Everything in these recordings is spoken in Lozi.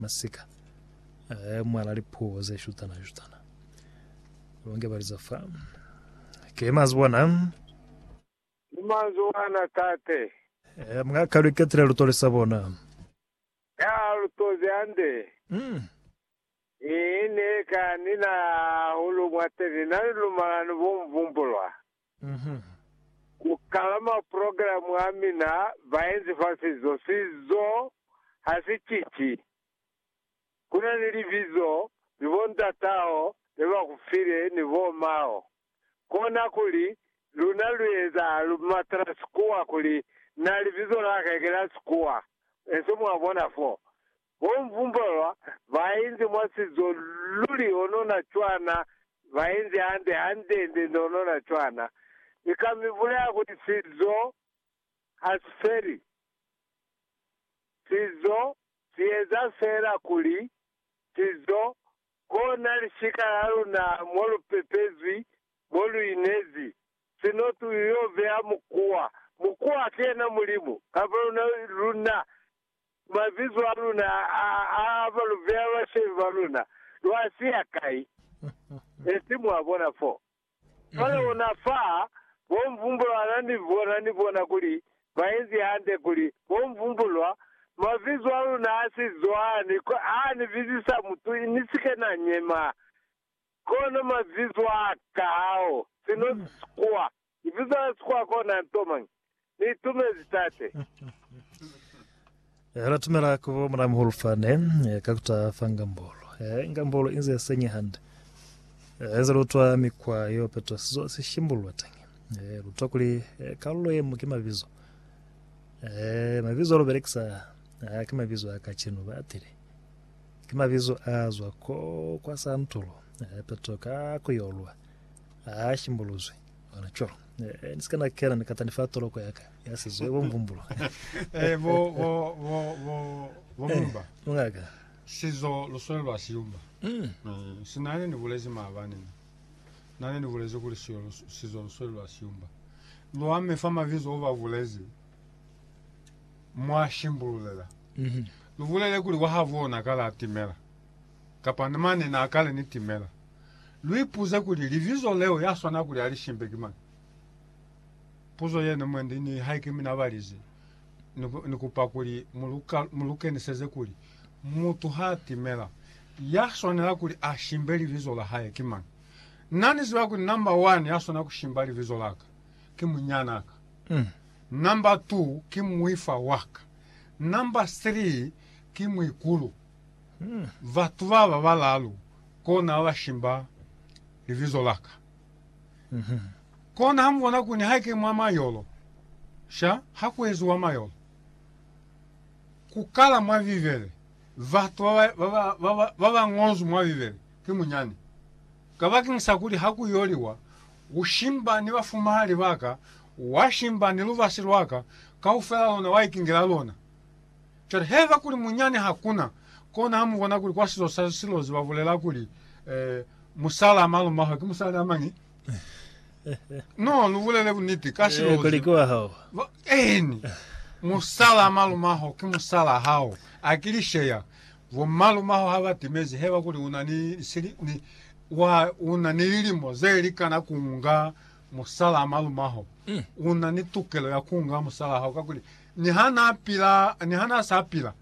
masika a mwala lipuo ze shutana shutana longe baliza fa ke mazi bona ni mazi wana tate e mga kalwe ketile lutole sa bona ya lutoze ande mm. ine ka nina hulu mwateli na lumalani bomvumbulwa Uhum. Ku kala maprogramu a mina baenzi fa sizo, sizo ha si cici. Ku na ni libizo ni bontat'aho ne ba ku file ni bom'aho. Kona kuli, luna lu eza Almatraa Sikuwa kuli na libizo la hae ki la Sikuwa, enso mwa bona fo. Bo Mvumba ba ba inzi mwa sizo luli honona cwana ba inzi hande handende ni honona cwana. Ni ka mi bulela kuli sizo ha si feli. Sizo si eza fela kuli sizo kona lishika la luna mo lu pepezwi, mo lu inezi. Sino tu yo beya mukuwa. Mukuwa ki yena Mulimu, kamba luna, luna ku mabizo a luna a a ba lu beha bashemi ba luna, lu a siya kai? Esi mwa bona fo. Cwale ona fa, bo Mvumbulwa ana ni bona ni bona kuli ba inzi hande, kuli, Bo Mvumbulwa, mabizo a luna a si zo a ni, a ni bizisa mutu ni si ke na nyema, kono mabizo a ka hao, sino kwa. Libizo la Sikhowa kona nto mañi? Ni itumezi Tate. Eh, la tumela ku bo Mulamuhulu fane, eh, ka kuta fa ngambolo. Eh, ngambolo inze ya senye hande. Eh, inze lutwa mikwa yo petwa sizo si shimbulwa teñi. Eh, lutwa kuli eh, kalulo ye mu ki mabizo. Eh, mabizo lo belekisa a ki mabizo a kacenu ba atile. Ki mabizo a zwa ko kwa santulo, eh, petwa ka kuyolwa. Ha shimbuluzwi. Bona co. Eh, ni sika na kena ni katani fa toloko ya ka ya sizo bo mvumbulo. Eh, bo bo bo bo bo eh, mumba. Mungaka. Sizo luswele lwa siyumba. Mm. Eh, sinane ni bulezi maabane ni. Nane ni bulezi kuli siyo sizo luswele lwa siyumba. Lwa me fa mabizo o ba bulezi mwa shimbululela. Mm -hmm. Lu bulele kuli wa ha bona ka la timela. Kapa ni mane na kale ni timela. Lu ipuze kuli, Libizo leo ya swana kuli Alishimbe ki mañi? Puzo yene mwendi ni haike mina balize. Ni, ni kupa kuli mu lu, mu lu keniseze kuli, Mutu ha timela, ya swanela kuli a shimbe libizo la hae ki mañi? Na ni ziba kuli namba wani ya swana ku shimba libizo la ka, ki munyana ka. Mm. Namba tuu, ki muifa wa ka. Namba three, ki muikulu. Batu baba balalu kona babashimba libizo laka. Kona hamubona kuni haike mwa mayolo, sha hakueziwa mayolo. Kukala mwa Bibele, batu babañozwi mwa Bibele ki munyani. Kabakeñisa kuli hakuyoliwa, ushimba ni bafumahali baka, washimba ni lubasi lwaka, kaufela lona waikingela lona. Cwale haiba kuli munyani hakuna, kona ha mubona kuli kwa sizo sa silozi babulela kuli, eh, musala a malumahwe ki musali a mañi? No, lubulele buniti, ka silozi. Kuli ki wa hao. Ba, eeni, musala a malumaho ki musala hao. A ki lisheya. Bomalumaho ha ba timezi haiba kuli una ni sili, ni, wa, una ni lilimo ze likana kunga musala a malumaho. Una ni tukelo ya kunga musala hao, kakuli Ni ha na pila, ni ha na sa pila,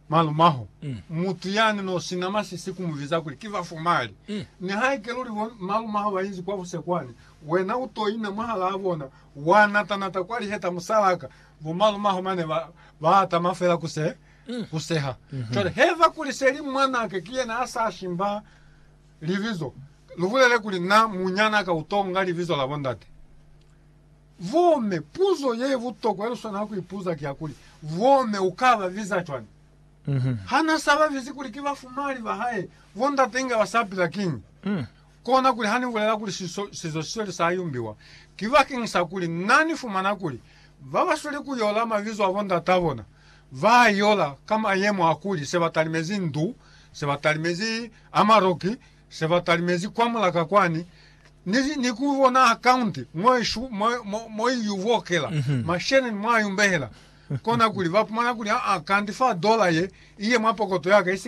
malumaho, mm. mutu yani no sina masisi kumuviza kuli ki vafumali. Mm. Ni ha ike luli bo malumaho ba inzi kwa busekwani, wena u to ina mwahalaa bona, wa natanata kwa liheta musalaka, bo malumaho mane ba, ba atama fela ku se, mm. ku seha. Mm -hmm. Cwale, heva kuli seli mwanake ki yena a sa shimba libizo, lubulele kuli na munyanaka u to nga libizo la bondate. Vome, puzo ye butokwa ye lu swanela ku ipuza ki ya kuli, Vome u ka ba biza cwañi? Ha n'a sa ba bizi kuli ki bafumali ba hae, bo ndate inge ba sa pila kiñi? Kona kuli ha ni bulela kuli sizo si sweli sa yumbiwa, ki bakeñisakuli n'a ni fumana kuli ba ba sweli ku yola mabizo a bo ndat'a bona ba a yola ka mayemo a kuli se ba talimezi ndu, se ba talimezi a maroki, Se ba talimezi kwa mulaka kwani, ni, ni ku bona akaunti mo i shu, mo, mo, mo i yu bokela Mhm. masheleni, mwa yu mbehela, kona kuli ba pumana kuli, aa, kanti fa dola ye i ye mwa pokoto ya ka, i si